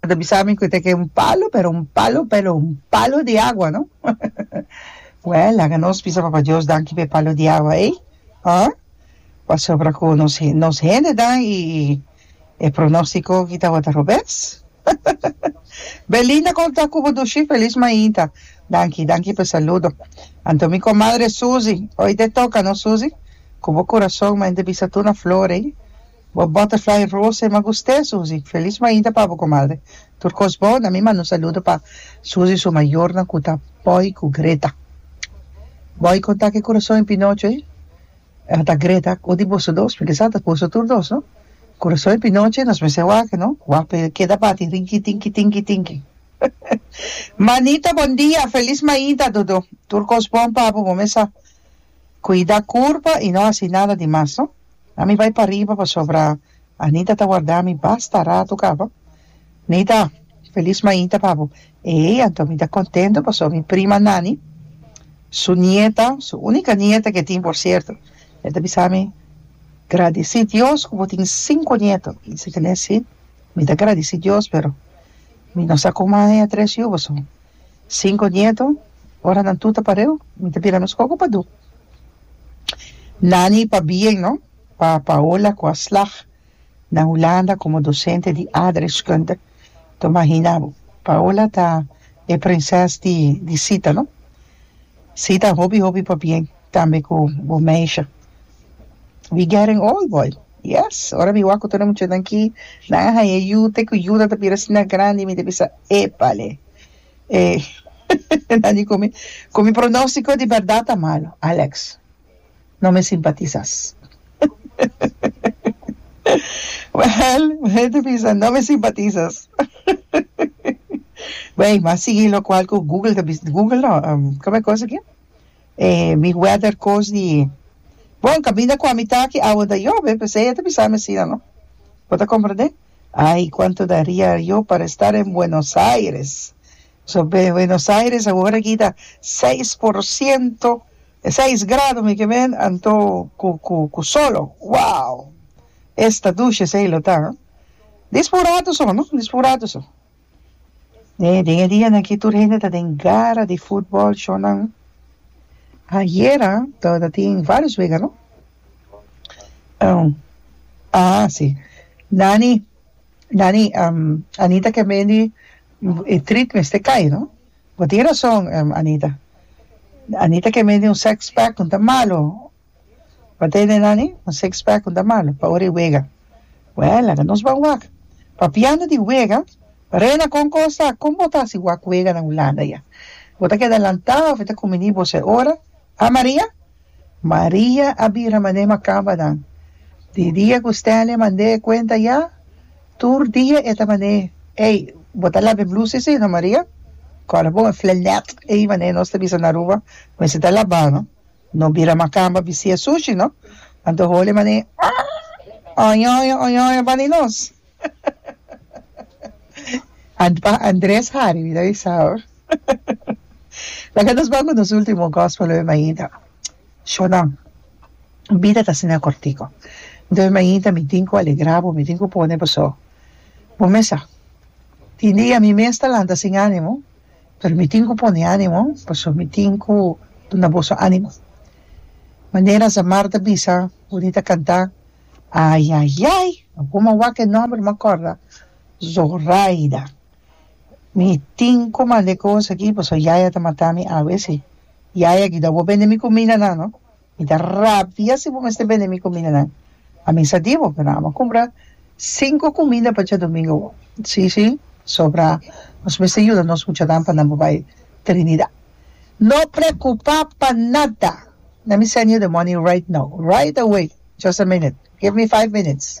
A ta bisa mi cu ta ke un palo, pero un palo, pero un palo di agua, no? Well, laga nos bisa Papa Dios danki p'e palo di agua ey, huh? Pasobra cu nos he, nos hendenan y e pronostico aki tabata robes. Belinda con ta cu bo dushi? Feliz mainta. Danki, danki p'e saludo. Anto mi comadre Susie, oite toca no Susie? Cu bo curason mente bisa tur na flor ey. Bo butterfly rosa e magust'e Suzy felis mainta pa bo comadre tur cos bon a mi manda un saludo pa Suzy su mayornan cu ta Boy cu Greta Boy con ta cu e curason e pinocho e a ta Greta cu di boso dos mi kisa ta boso tur dos no curason e pinocho nos mester wak no wak pa e keda bati rinki tinki tinki tinki manita bon dia felis mainta dodo tur cos bon pa bo bo mester cuida curpa y no haci nada di mas no. A mi bai pariba pasobra Anita ta warda mi basta ratu caba. Nita, Feliz maita pa bo. Ey, anto mi ta contento pasobra mi prima Nani, su nieta, su unica nieta que tin por cierto, el ta bisa mi, Gradeci Dios cu bo tin cinco nieto. Mi dice, Tene si, mi ta gradeci Dios pero mi no sa con maya tres yuba so. Sinku nieto, ora nan tur ta pareu, mi ta bira nos koko pa du. Nani pa bien no, pa Paola ku a slag na Hulanda komo dosente di aardrijkskunde. Ton mahina bo, Paola ta e prinses di di sita no. Sita hopi hopi pa bien, tambe ku bo meisje. We getting old boy. Yes, ora mi wak ku tur e muchanan aki nan a haña yu te ku yu nan ta bira asina grandi mi ta bisa epale e nan di ku mi ku mi pronostiko di bèrdat ta malu Alex no mi simpatisas wèl mi ta bisa no mi simpatisas bai mi a sigui lokual ku Google ta bisa Google no kòm e kos aki. E mi weather course di e. Bon, caminda cua mi ta aki awe ta yove, p'esey ella ta bisami asina, no? Bo ta comprende? Ay, cuanto daria yo pa restar en Buenos Aires! So, be, Buenos Aires awor a kita seis por ciento, seis grado mi ke men, anto cu, cu, cu solo. Wow! Esta dushe esey lo ta, ha? Dis fu un rato so, no? Dis fu un rato so. He den e dianan aki tur hende ta den gara di futbòl shownan. Ayera tabata tin vários wega, no? Hm, a si. Nani, Nani, Anita ke mendi e trit mester kai, no? Bo tin razon, Anita. Anita ke mendi un sex pack, no ta malo. Pa Dene Nani un six pack no ta malo pa ora e wega wèè laga nos ban wak papiando di wega Rena kon kos ta kon bo ta si wak wega na Hulanda ya bo ta keda lantá of e ta kuminí bo se ora ha Maria? Maria a bira mand'é makamba nan di dia ku Stanley a mand'é e kuenta ya tur dia e ta mand'é ey bo ta laba e blusi si no Maria? Kòrda bon e flanèt ey mand'é nos ta bisa na Aruba mester ta labá no. No bira macamba bistia sushi no. Anto Holy mane ah oñoño oñoño bani nos. Ant pa Andres Harry mi ta bisa ho. Laga nos ban cu nos ultimo gospel lo e mañita. Shonan bida ta asina cortico. Nto e mañita mi tin cu alegra bo mi tin cu pone bo so. Bo mester tin di ami mes ta lanta sin animo. pero mi tin cu pone animo pasobra mi tin cu duna boso animo manera Zamar ta bisa Boni ta canta ayayay awor ma waca e nomber ma corda Zoraida mi tin cu manda e cosa aki pasobra yaya ta matami awe si yaya guida awor bende mi comida nan no. Mi ta rabia si bo mester bende mi cumindanan. A misa di bo pero amo cumbra cinco cuminda pa dje domingo bo. Si, si, sobra nos mester yuda nos muchanan pa nan bo bay Trinidad. No preocupa pa nada. Let me send you the money right now, right away, just a minute, give me five minutes.